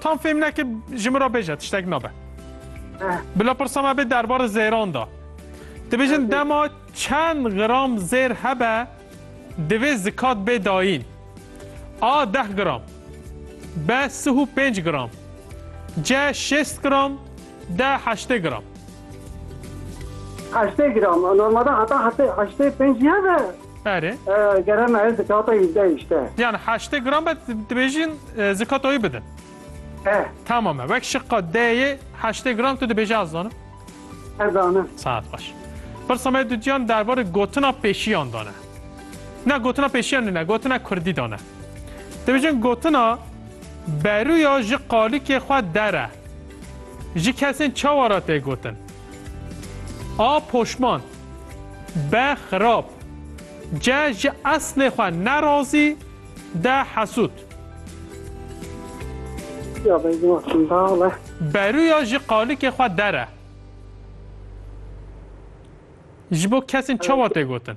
Tam fêm neke ji min re bêje tiştek nabe. Bila pirsa me bê derbarê zêran da. Dibêjin dema çend gram zêr hebe divê zikat bê dayîn. A deh gram. B sih û pênc gram. C şêst gram. D heştê gram. Heştê gram. Normalde heta heştê pêncî hebe. Erê. Gere me zikata yüzde işte. Yani heştê gram be dibêjin e, zikatoyî bidin. Eh, Tamam e. Wek şiqa D'yê heştê gram tu dibêje ez zanim. ez anı. Saat xweş. Pirsa me dudyan derbarê gotina pêşiyan dane. Ne gotina pêşiyan ne, gotina kurdî dane. Dibêjin gotina beruya ji qalikê xwe dere. Ji kesên çawa re tê gotin? A poşman, B xirab, C ji eslê xwe ne razî, D hesûd. Ya bêgin wextim dal e. Berûya ji qalikê xwe der e. Ji bo kesên çawa tê gotin?